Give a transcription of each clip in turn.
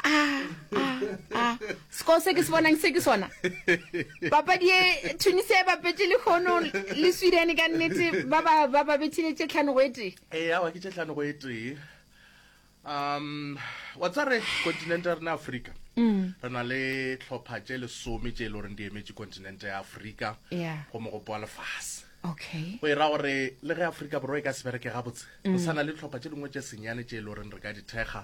Ah, ah, ah. sekolo se ke se bonang se ke sona papadi e tunisia e bapetse le kgono le sweden ka nnete ba ba ba ba bethile tše tlhano go e tee ee awa ke tšetlhano go e tee um wa tsa re continente ya rena afrika mm. re na le tlhopha tše lesome tše e le goreng di emetše continente ya afrika yeah. go mogopo wa lefase okay go e ra gore le ge afrika borwa e ka se bereke gabotse go mm. sana le tlhopha tše dingwe tše senyane tše e le goreng re ka dithekga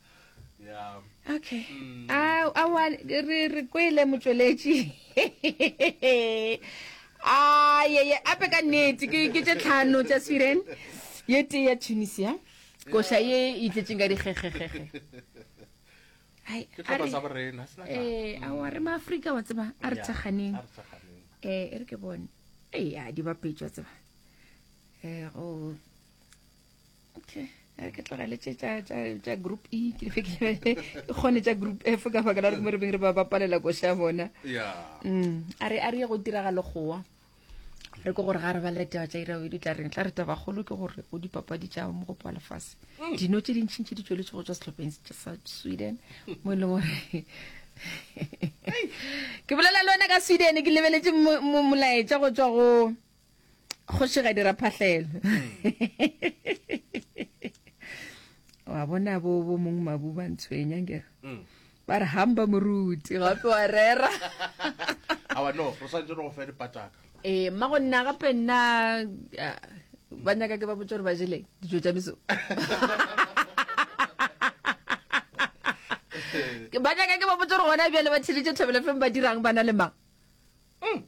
okay mm. a a wa re re kwele motsweletši a ye ye ape ka nnete ke ke tše tlhano tša sweden ye tee ya tunisia koša ye e tletseng ka dikgegegege ee, a wa re maaforika wa tseba a re tshakganeng ee e re ke bone eya di bapetšwa tseba ee go okay a ke tlogele tše tša group e ke fe ke kgone tša group f ka baka la gore mo re beng re ba ba palela koša bona mm, a re a re ye go tiragalo gowa re ko gore ga re ba letaba tša irawe di tla reng tla re tabagolo ke gore o dipapadi tša mo gopo wa lefase mm. dino tše dintšhintšhi di tsweletse go tswa setlhopheng sa sweden mo e leng gore ke bolela le wena ka sweden ke lebeletse molaetša go tswa go kgoši ga dira phahlelo wa bona bo bo mong mabu ba ntshwenya nkere mm. ba re hamba moruti gape wa rera ee mma go nna gape nna ba nyaka ke ba botsa gore ba jeleng dijo tsa meso ba nyaka ke ba botsa gore gona bjale ba tsheditše thobelefeng ba dirang ba na le mang mm.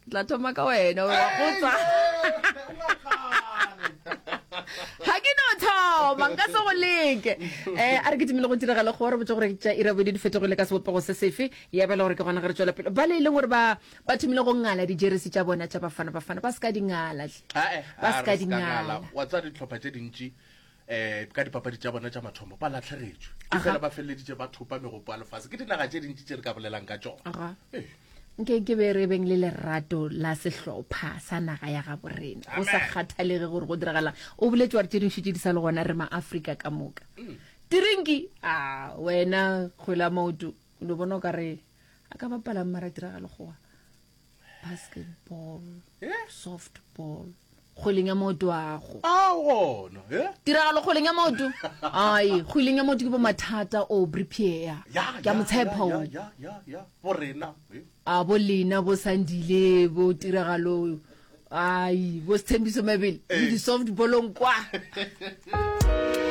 tla thoma ka wena wa gotsa ga ke no thoma nka se go leke um a re ke timile go diragala go re botse gore tša irabodi di fetogile ka sebopego se sefe ya bela gore ke gona ge re tswela pele ba le e leng gore ba thomile go ngala dijeresi tša bona tša bafana bafana ba se ka dingala ba se ka dingala wa tsa ditlhopha tše dintši um ka dipapadi tša bona tša mathomo ba latlhegetšwe e fela ba feleleditše ba thopa megopo ya lefase ke dinaga tše dintši tše re ka bolelang ka tšona nke ke be re beng le lerato la sehlopha sa naga ya ga borena go sa kgathalege gore go diragalang o boletse gore tse dintšhi tse di sa le gona re maaforika ka moka mm. tirinki a wena kgwela maoto lo bona o ka re a ka bapalang mara diragale gowa basketball Eh? softball kgweleng ya maoto ago a gona e tiragalo kgweleng ya maoto ai kgweleng ya maoto ke bo mathata o bripiea ke a motshepa o ya borena eh? a bo lena bo sandile bo tiragalo ai bo sethembiso mabele le Ee. di-softballong kwa